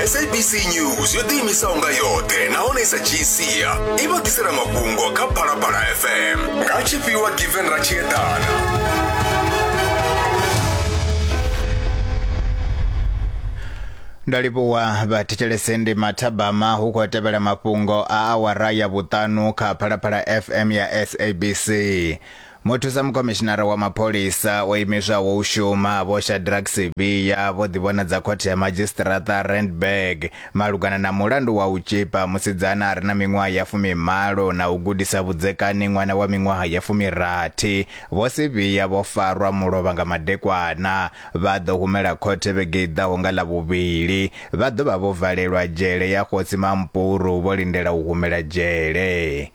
sabc news yo ḓiimisaho nga yoṱhe nahone i sa dzhii sia i vha ḓisela mafhungo kha phalaphala fm nga tshifhiwa given ra tshi eḓana ndo livhuwa vhathetshelese ndi mathabama hu khou tevhela mafhungo a awara ya vhuṱanu kha phalaphala fm ya sabc Muthusa mukhomishinara wa mapholisa o imiswaho u shuma Vho Shadrack Sibiya vho ḓivhonadza khothe ya madzhisiṱiraṱa Randburg malugana na mulandu wa u tshipa musidzana a re na miṅwaha ya fumimalo na u gudisa vhudzekani ṅwana wa miṅwaha ya fumirathi. Vho Sibiya vho farwa mulovha nga madekwana vha ḓo humela khothe vhege i ḓaho nga Ḽavhuvhili. Vha ḓo vha vho valelwa dzhele ya Kgosi Mampuru vho lindela u humela dzhele.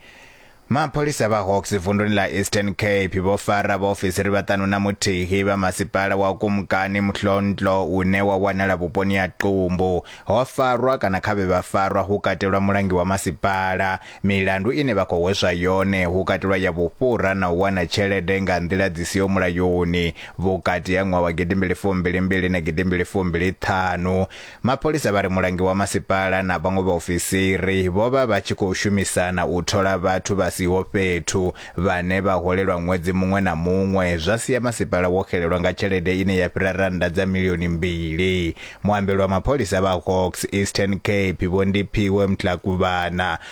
Mapholisa vha Hawks vunduni ḽa Eastern Cape vho fara vhaofisiri vhaṱanu na muthihi vha masipala wa Kumkani Mhlontlo une wa wanala vhuponi ha Qumbu. Ho farwa kana kha vhe vha farwa hu katelwa mulangi wa masipala. Milandu ine vha khou hweswa yone hu katelwa ya vhufhura na u wana tshelede nga nḓila dzi siho mulayoni vhukati ha ṅwaha wa gidimbili fumbili mbili na gidimbili fumbili ṱhanu. Mapholisa vha ri mulangi wa masipala na vhaṅwe vhaofisiri vho vha vha tshi khou shumisana u thola vhathu vha siho fhethu vhane vha holelwa ṅwedzi muṅwe na muṅwe zwa sia masipala wo xelelwa nga tshelede ine ya fhira rannda dza milioni mbili. Muambeli wa mapholisa vha Hawks Eastern Cape Vho Ndiphiwe Mtlakuvhana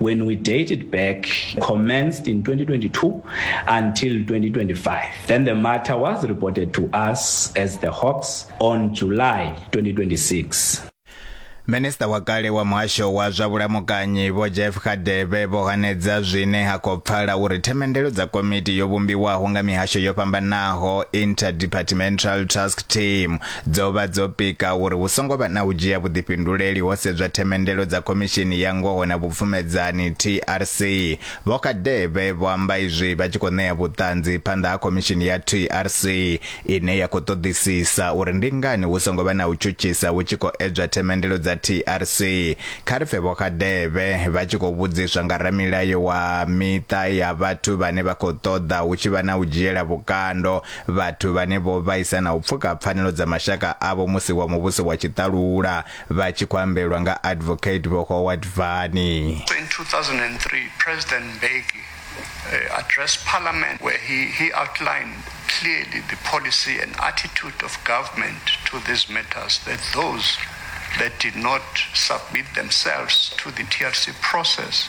When we date it back, commenced in 2022 until 2025. Then the matter was reported to us as the Hawks on July 2026. Minista wa kale wa muhasho wa zwa vhulamukanyi vho Jeff Khadebe vho hanedza zwine ha khou pfala uri themendelo dza komiti yo vhumbiwaho nga mihasho yo fhambanaho Interdepartmental Task Team Dzo vha dzo pika uri hu songo vha na u dzhia vhuḓifhinduleli ho sedzwa themendelo dza Khomishini ya Ngoho na Vhupfumedzani, TRC. Vho Kadebe vho amba izwi vha tshi khou ṋea vhuṱanzi phanḓa ha Khomishini ya TRC ine ya khou ṱoḓisisa uri ndi ngani hu songo vha na u tshutshisa hu tshi khou edzwa themendelo dza TRC. Kha ri pfe Vho Kadebe vha tshi khou vhudziswa nga ramilayo wa miṱa ya vhathu vhane vha khou ṱoḓa hu tshi vha na u dzhiela vhukando Vhathu vhane vho vhaisa na u pfuka pfanelo dza mashaka avho musi wa muvhuso wa tshiṱalula vha tshi khou ambelwa nga Advocate Vho Howard Vani. In 2003, President Mbeki uh, addressed Parliament where he, he outlined clearly the policy and attitude of government to these matters that those that did not submit themselves to the TRC process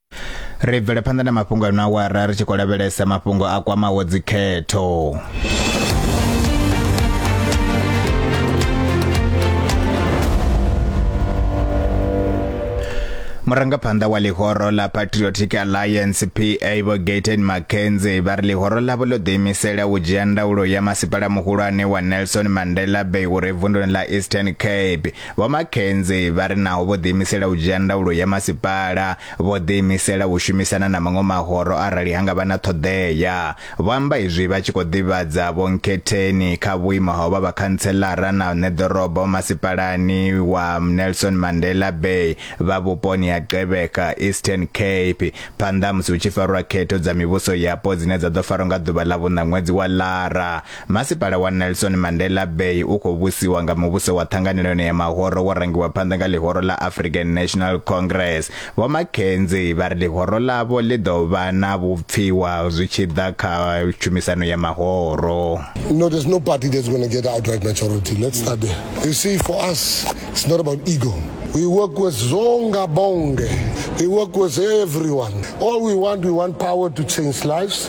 ri bvele phanḓa na mafhungo ano awara ri tshi khou lavhelesa mafhungo a kwamaho dzikhetho murangaphanḓa wa ḽihoro ḽa patriotic alliance pa vho gaten mackenzie vha ri ḽihoro ḽavho ḽo ḓiimisela u dzhia ndaulo ya masipala muhulwane wa nelson mandela bay uri vunduni ḽa eastern cape Vho Makhenze vha ri naho vho ḓiimisela u dzhia ndaulo ya masipala, vho ḓiimisela u shumisana na maṅwe mahoro arali ha nga vha na ṱhoḓea. Vho amba izwi vha tshi khou ḓivhadza Vho Nkhetheni kha vhuimo ha u vha vhakhantseḽara na ṋeḓorobo masipalani wa Nelson Mandela Bay vha vhuponi ha Gqeberha, Eastern Cape, phanḓa ha musi hu tshi farwa khetho dza mivhuso yapo dzine dza ḓo farwa nga ḓuvha ḽa vhuṋa ṅwedzi wa Lara. Masipala wa Nelson Mandela Bay u khou vhusiwa nga muvhuso wa ṱhanganelano ya mahoro wo rangiwa phanḓa nga ḽihoro ḽa African National Congress. Vho McKenzie vha ri ḽihoro ḽavho ḽi ḓo vha na vhupfiwa zwi tshi ḓa kha tshumisano ya mahoro. No, there's no party that's going to get outright majority. Let's start there. You see, for us, it's not about ego. We work with Zonga Bonge. We work with everyone. All we want, we want power to change lives.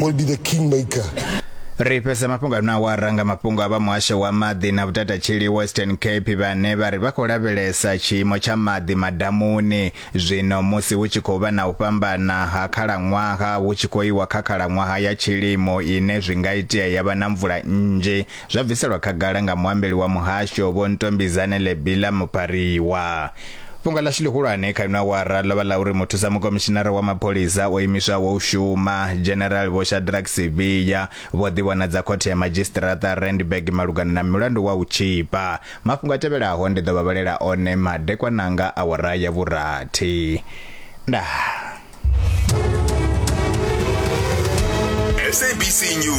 will be the kingmaker. ri fhedza mafhungo ano awara nga mafhungo a vha muhasho wa maḓi na vhutatatsheli western cape vhane vha ri vha khou lavhelesa tshiimo tsha maḓi madamuni zwino musi hu tshi khou vha na u fhambana ha khalaṅwaha hu tshi khou iwa kha khalaṅwaha ya tshilimo ine zwi nga itea ya vha na mvula nnzhi Zwa bviselwa khagala nga muambeli wa muhasho Vho Ntombizane Lebila Mupariwa. Fhungo ḽashu ḽihulwane kha ino awara ḽo vha ḽa uri muthusa mukomishinara wa mapholisa o imiswaho u shuma, General Vho Shadrack Sibiya, vho ḓivhonadza khothe ya madzhisiṱiraṱa Randburg malugana na mulandu wa u tzhipa. Mafhungo a tevhelaho ndi ḓo vha vhalela one madekwana anga awara ya vhurathi. Ndaa. SABC News.